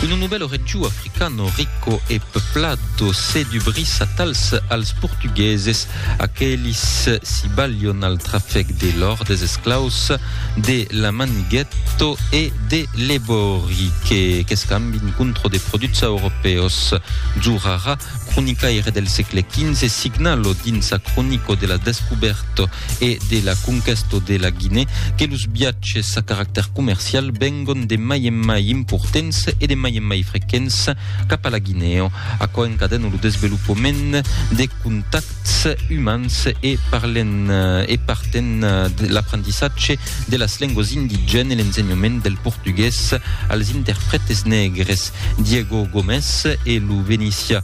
Uno novèlo regiu africano rico e peuplado se dubrís atals als portugueses, aquelis si balhon al trafec de l'òr des esclaus de la Maniguèto e de l'Ebòri que qu'escambin contro de produts europèus. Zurara, cronicaire del sègle XV, signa lo dins sa cronico de la descubèrto e de la conquèsta de la Guinée que los viatges a caractèr comercial vengon de mai en mai importants e de mai en mai frequents cap a la Guinèo, aquò encadena lo desvelopament de contacts umans e parlen e parten de l'aprendissatge de las lengas indigènes e l'ensenhament del portugués als interprètes negres. Diego Gomes e lo Venisia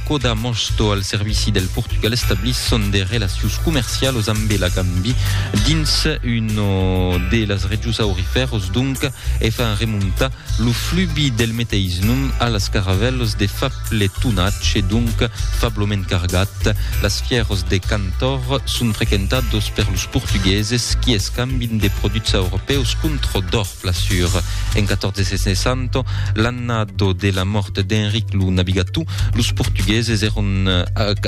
Coda Mosto al servici del Portugal establisson de relacions comercialos ambe la Gambi dins uno de las regius aurifèros donca e fan remontar lo flubi del meteis nom a las caravèlos de fable tonatge e donca fabloment cargat. Las fièros de Cantor son frequentados per los portugueses qui escambin de produchs aurofèus contra d'òr. Flassur. En 1460, l'annado de la mòrt d'Enric lo Navigatou, los portugueses èron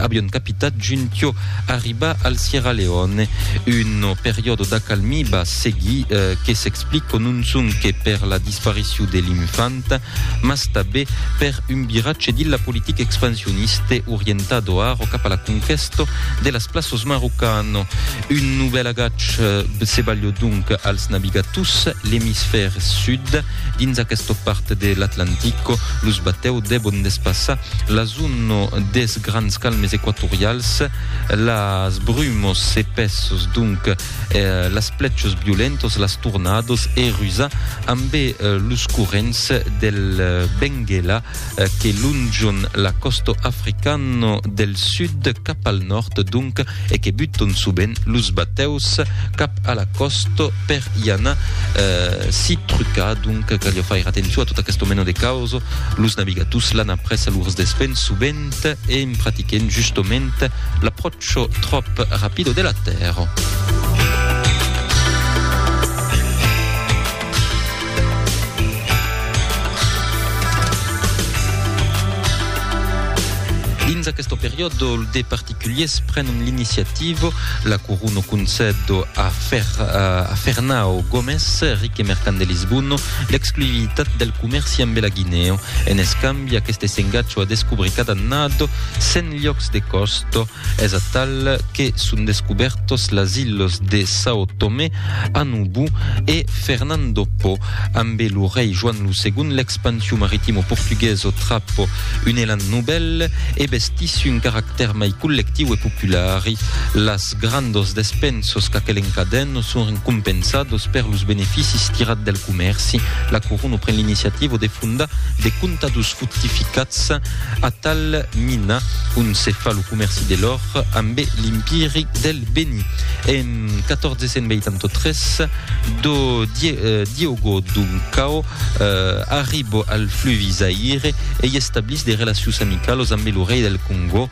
avion capitat juntiò arribar al Sierra Leone. Un periòdo d'acalmí va seguir que s'explico non sonque per la disparicion de l'infanta, mas tabé per un viratge dins la politica expansioniste orientado aro cap a la conquèsto de las plaços marocano. Un novèl agach se balhó donc als navigators l'emisfèr sud. Dins aquesta part de l'Atlantico, los batèus devon despassar la zona des grands calmes equatorials. Las brumos s'epèsson donc, las plèchos violentos, las tornados e rusar ambe los corrents del Benguela. eh, que lonjon la costo africano del sud cap al nord donc e que buton soben los bateus cap a la costo per i anar eh, si trucar donc calio faire atenço a tot aquest meno de causo los navigators l'an après a lors despen sovent e en pratiquen justament l'approcho trop rapido de la terra. Dins aquest periòde, de particuliers prenen l'iniciativa, la Corona concèd a, Fer, a Fernao Gómez, ric e mercant de Lisbona, l'exclusivitat del comèrci amb la Guinea. En escambi, aquest s'engatja a descobrir cada annada 100 llocs de costa Es atal que son descubèrtos las ilhos de São Tomé, Anubu e Fernando Po. Ambe lo rei Joan lo Segon l'expansion maritimo portuguèso trap un elan novèl e bestiss un caractèr mai collectiu e populari. Las grandos despensos qu'aquel encadèn son recompensados per los beneficis tirat del comèrci. La corona pren l'iniciativa de fondar de comptados fortificats atal mina on se fa lo comèrci de l'òr ambe l'Impiri del Beni. En 1483, do Diogo Duncao arribo al fluvi Zaire e i establís de relacions amicalos ambe lo rei del Congò,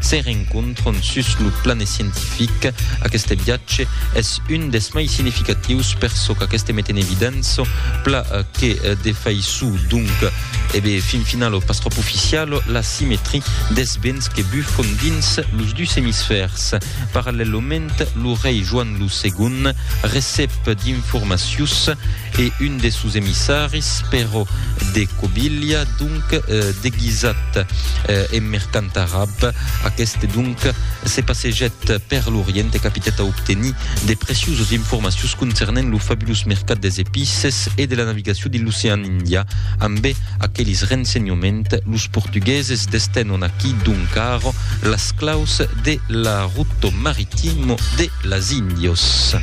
Se rencontron sus lo plan scientific. Aqueste viatge es un des mai significatius per çò qu'aqueste met en evidença, pla que de faiçon donc e be fin finalo pas tròp oficialo, la simetria des vents que bufon dins los dus emisfèrs. Parallèlament, lo rei Joan lo Segond recep d'informacius e un des sos emissaris, Pèro de Cobilha, donc deguisat en mercant arab. Aqueste, donc, se passejèt per l'Orient e capitèt a obtenir de preciusos informacions concernent lo fabulós mercat des epices e de la navigacion dins l'ocean Indià. Ambe aquelis rensenhoments, los portugueses destenon aquí, donc ara, las claus de la ruto maritimo de las Indios.